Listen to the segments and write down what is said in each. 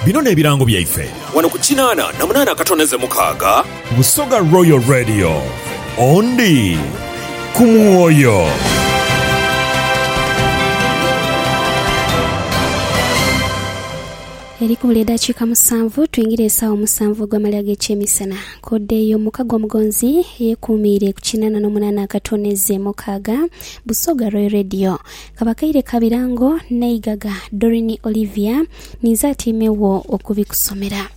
Bino n'ebirango byaife. Wano ku kinaana na munaana akatoneze mukaaga. Busoga Royal Radio. Ondi ku mwoyo. Eri kubula edhakiika musanvu twingire esawa omusanvu ogw'amali ag'ekyemisana. Kode eyo muka gw'omugonzi eyekuumiire ku kinaana n'omunaana akatoneze mukaaga. Busoga Royal Radio. Kabakaire ka birango n'eigaga Doreen Olivia ninze atiime wo okubikusomera.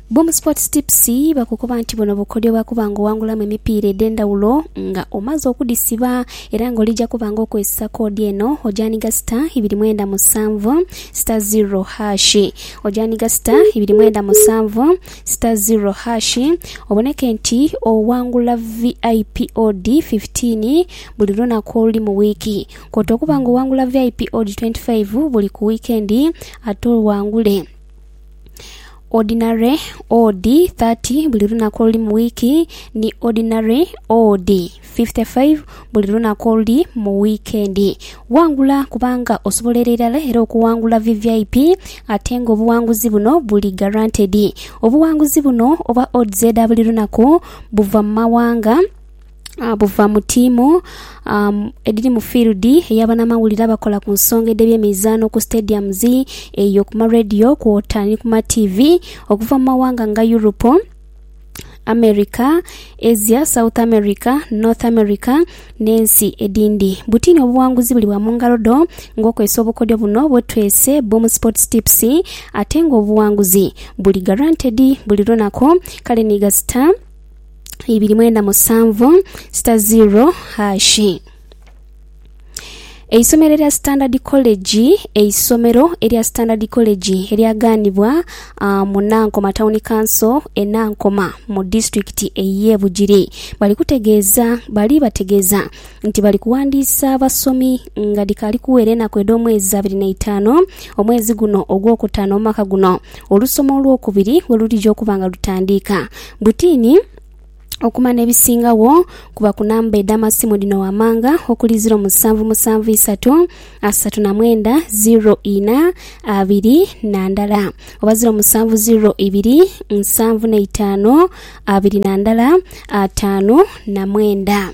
Boom Sports Tips bakukoba nti buno bukodyo bwa kuba nga owangulamu emipiira edh'endhawulo nga omaze okudhisiba era nga olija kuba nga okozesa koodi eno ogyaniga sita ibiri mwenda musanvu sita ziro haashi ogyaniga sita ibiri mwenda musanvu sita ziro haashi oboneke nti owangula VIP odi 15 Buli lunaku oluli mu wiiki. Kwoota okuba nga owangula VIP Odi 25 buli ku wiikendi ate owangule Ordinary Odi 30 buli lunaku oluli mu wiiki ni Ordinary Odi 55 buli lunaku oluli mu wiikendi. Wangula kubanga osobola er'erala era okuwangula VVIP ate nga obuwanguzi buno buli guaranteed. Obuwanguzi buno oba Odds edha buli lunaku buva mu mawanga. buva mu tiimu edhiri mu field eya banamawulire abakola ku nsonga edh'ebyemizaano ku stadiums eyo ku ma radio kwota ni ku ma tiivi okuva mu mawanga nga Europe, America, Asia, South America, North America n'ensi edhindhi. Butini obuwanguzi bulibwa mu ngalo dho ng'okozesa obukodyo buno bwetwese Boom Sports Tips ate ng'obuwanguzi buli guaranteed buli lunaku kale ni gasita. ibiri mwenda musanvu sita ziro haashi. Eisomero erya Standard College eisomero erya Standard College eryagaanibwa ah, mu Nankoma Town Council e Nankoma mu disitulikiti ey'e Bugiri bali kutegeeza bali bategeeza nti bali kuwandiisa abasomi nga dhikaali kuwera enaku edh'omwezi abiri n'eitaanu omwezi guno ogwokutaano omwaka guno olusoma olwokubiri we lulija okuba nga lutandiika. Butini okuma n'ebisingagho kuba ku namba edh'amasimu dhino wammanga okuli, ziro musanvu musanvu isatu asatu na mwenda ziro ina abiri na ndala oba ziro musanvu ziro ibiri nsanvu na itaanu abiri na ndala ataanu na mwenda.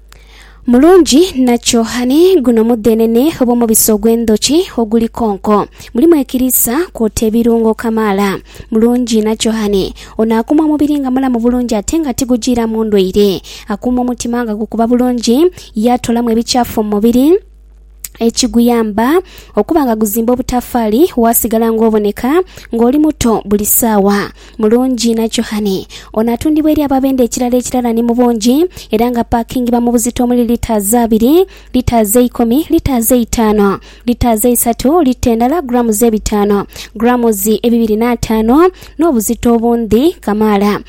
Mulungi nakyo ani? Guno mudhenene oba omubisi ogw'endhoki oguli konko. Mulimu ekiriisa kwota ebirungo kamaala. Mulungi nakyo ani? Ono akuuma omubiri nga mulamu bulungi ate nga tigujiiramu ndwaire. Akuuma omutima nga gukuba bulungi, yaatoolamu ebikyafu mu mubiri. ekiguyamba okuba nga guzimba obutafaali waasigala ng'oboneka ng'oli muto buli saawa. Mulungi na Johane. Ono atundibwa eri ababenda ekirala ekirala ni mu bungi era nga apaakingibwa mu buzito omuli litres abiri, litres eikumi, litres eitaano, litres eisatu, lita endala, grams ebitaano, grams ebibiri n'ataano n'obuzito obundhi kamaala.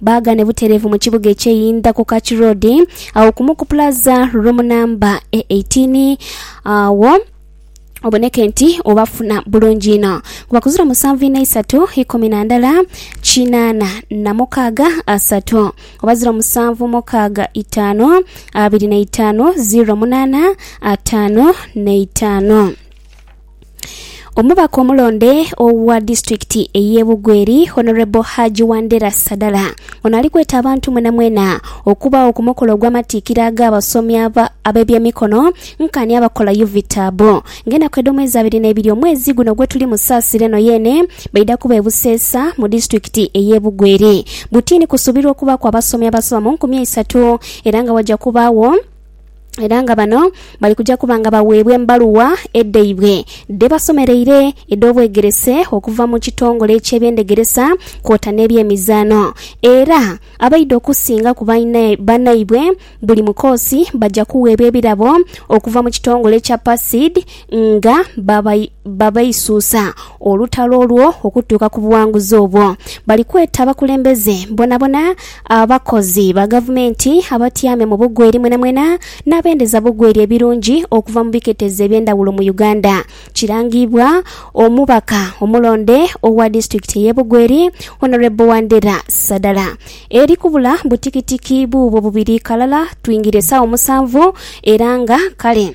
Baagane butereevu mu kibuga eky'eyindha ku Kach Road, agho kumu ku pulaza room namba e 18, agho oboneke nti obafuna bulungi inho. Kuba kuzira musanvu inha isatu ikumi na ndala kinaana na mukaaga asatu oba ziro musanvu mukaaga itaanu abiri na itaanu ziro munaana ataanu na itaanu. Omubaka omulonde owa disitulikiti ey'e Bugweri, Honourable Haji Wandera Sadala, ono ali kweta abantu mwenamwena okubaagho ku mukolo ogw'amatikkira ag'abasomi aba ab'ebyemikono nkaani abakola Uvitabu ng'enaku edh'omwezi abiri n'ebiri omwezi guno gwetuli mu Saasira eno yeene baidha kuba e Buseesa mu disitulikiti ey'e Bugweri. Butiini kusuubirwa okubaaku abasomi abasoba mu nkumi eisatu era nga waja kubaagho era nga bano bali kuja kuba nga baweebwa embaluwa edhaibwe dhebasomereire edh'obwegerese okuva mu kitongole eky'ebyendhegeresa kwota n'ebyemizaano era abaidha okusinga ku banaibwe buli mu koosi baja kuweebwa ebirabo okuva mu kitongole ekya PACID nga babaisuusa olutalo olwo okutuuka ku buwanguzi obwo. Bali kweta abakulembeze bonabona, abakozi ba gavumenti, abatyaame mu bugweri mwenamwena n'abendeza bugweri ebirungi okuva mu biketezo eby'endhawulo mu Uganda. Kirangiibwa omubaka omulonde owa disitulikiti ey'e Bugweri, Honourable Wandera Sadala. Eri kubula butikitiki buubwo bubiri ghalala twingire esaawa musanvu era nga kale.